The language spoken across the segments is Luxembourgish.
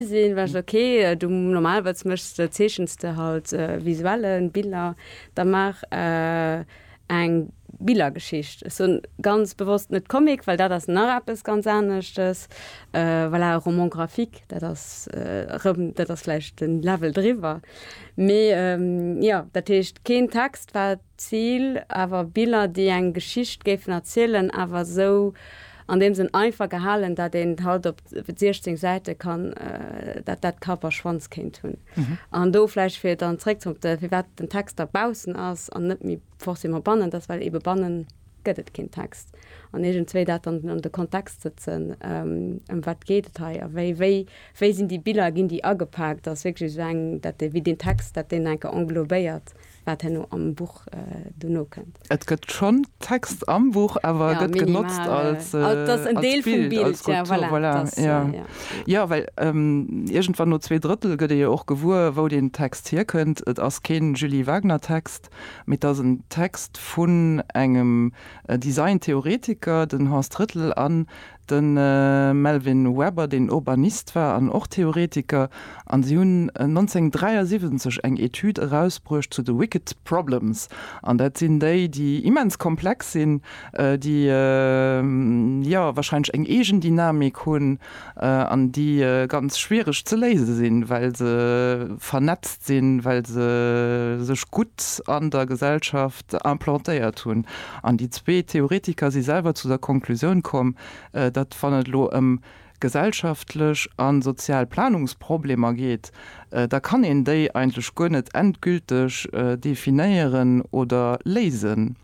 Sinn war ok du normalerweis mechs de zeechens de halt visuellen Biller da maach eng Billergeschicht. Ech soen ganz bewosst net Comic well dat ass nach eppes ganz aneschtes voilà e Roman graphique dat ass erëm dat ass vläicht den Level driwwer mee jo dat heescht keen Text wat Zil, awer Biller déi eng Geschicht géifen erzielen, awer esou an deem Sënn einfach gehalen, dat een halt op 16 Säite kann dat dat Kapp a Schwanz kéint hunn. An do vläicht fir dann zréckzonte firwat den Text da baussen ass an net méi forcément bannen, dat ass well ebe banne gëtt et keen Text an iergendzwéi dat dann an de Kontext sëtzen, ëm wat geet et hei a wéi wéi wéi sinn déi Biller, ginn déi agepaakt, ass wierklech esou eng dat dee wéi deen Text dat deen enke englobéiert. wat herno am Buch dono kënnt. Et gëtt schonn Text am Buch, awer e gëtt genotzt als Bild, als Skulptur. Voilà, jo. Jo, well iergendwann no zwee Drëttel gëtt ee jo och gewuer, wou deen Text hierkënnt. Et ass kee Julie Wagner-Text, mee et ass en Text vun engem Design-Theoretiker, den Horst Rittel, an De Melvyn Webber, deen Urbanist war an och Theoretiker, a si hunn 1973 eng Etüd erausbruecht zu de Wicked Problems. An dat sinn déi, déi immens komplex sinn, déi, jo, warscheinlech eng eegen Dynamik hunn an déi ganz schwiereg ze léise sinn, well se vernetzt sinn, well se sech gutt an der Gesellschaft, implantéiert hunn. An déi zwee Theoretiker si selwer zu der Konklusioun komm, datt wann et elo ëm gesellschaftlech a sozial Planungsproblemer geet, da kann een déi eigentlech guer net endgülteg definéieren oder léisen.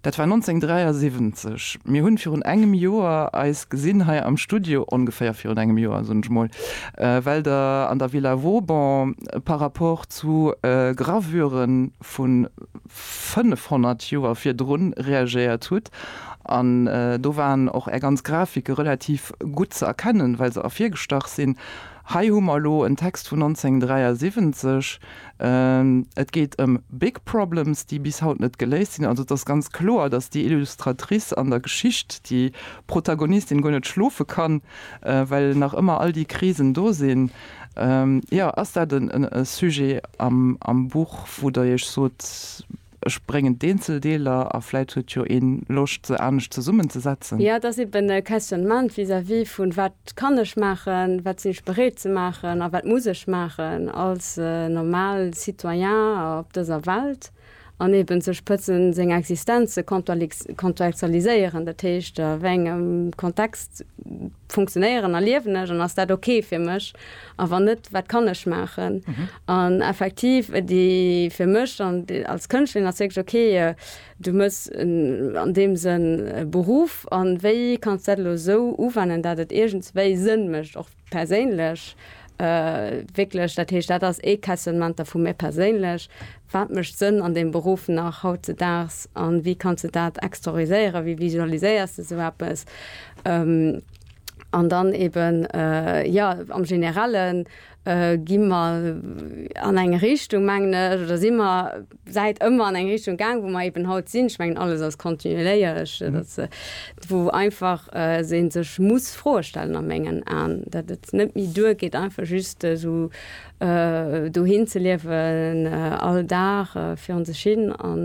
Dat war 1973. Mir hunn virun engem Joer eis gesinn hei am Studio, ongeféier virun engem Joer, soen ech emol, well Der an der Villa Vauban par rapport zu Gravure vu 500 Joer virdrun reagéiert hutt. An do waren och Är ganz Grafike relativ gutt ze erkennen, well se ervirgestach sinn. Hei hu mer elo en Text vun 1973. Et geet ëm big problems, déi bis haut net geléist sinn. Also et ass ganz kloer, datt déi Illustratrice an der Geschicht, déi Protagonistin, guer net schlofe kann, well nach ëmmer all déi Krisen do sinn. Jo, ass dat e Sujet am Buch, wou Der Iech sot, ech bréngen d'Eenzeldeeler a vläit huet jo ee Loscht, se anescht zesummenzesetzen? Jo, et ass eben e Questionnement vis-à-vis vun, Wat kann ech maachen, wat sinn ech bereet ze maachen a wat muss ech maachen als normal Citoyen op dëser Welt? an eben ze spëtzen, seng Existenz ze kontextualiséieren, dat heescht, a wéi engem Kontext funktionéieren a liewen ech an ass dat ok fir mech a wann net, wat kann ech maachen? An effektiv déi fir mech an als Kënschtlerin ass wierklech ok, du hues an deem Sënn e Beruff a wéi kanns dat elo esou uwennen, dat et iergendswéi Sënn mécht och. Perséinlech, wierklech, dat heescht, dat ass ee Questionnementer vu mir perséinlech, Wat mécht Sënn an deem Beruff nach hautzedaags a wéi kanns de dat exterioriséieren? Wéi visualiséiers de esou eppes? An dann eeben, jo, am Generellen gi mer an eng Richtung, mengen ech, oder si mer, Säit ëmmer an eng Richtung gaang, wou mer eben haut sinn. Ech mengen, alles ass kontinueléierlech, dass, wou einfach ee sech muss Froe stellen a mengen Aen, datt et net méi duergeet, einfach just esou dohin ze liewen, all Dag virun sech hin an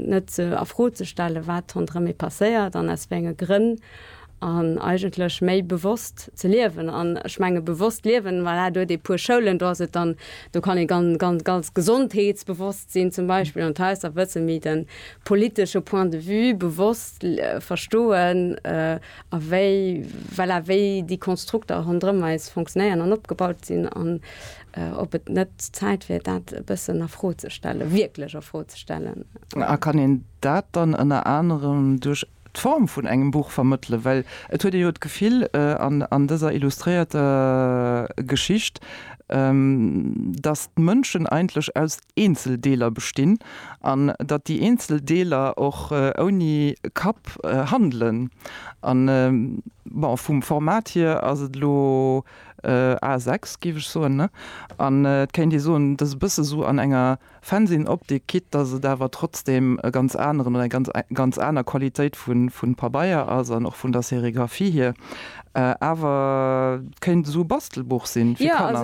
net a Fro ze stellen, wat ronderëm ee passéiert an aus wéi enge Grënn. an eigentlech méi bewosst ze liewen an ech menge bewosst liewen, voilà, do huet ee e puer Schoulen, do ass et dann, do kann ee ganz, ganz, ganz gesondheetsbewosst sinn zum Beispill an d'Hausser wëssen, mee de politesche Point de vue bewosst verstoen a wéi, voilà, wéi déi Konstrukter ronderëm eis fonctionnéieren an opgebaut sinn an ob et net Zäit wier, dat e bëssen a Fro ze stellen, wierklech a Fro ze stellen. A kann een dat dann ënner anerem duerch d'Form vun engem Buch vermëttelen, well et huet ee jo d'Gefill an dëser illustréierter Geschicht, datt d'Mënschen eigentlech aus Eenzeldeeler bestinn an datt déi eenzel Deeler och ouni Kapp handelen. An bon, vum Format hier ass et elo A6, géif ech soen, ne? An et kéint ee soen, et ass e bësse sou an enger Fennsinn Optik quitt dass et awer trotzdem e ganz aneren oder eng ganz aner Qualitéit vun Pabeier ass an och vun der Sérigraphie hier. Awer kéint esou e Bastelbuch sinn fir Kanner.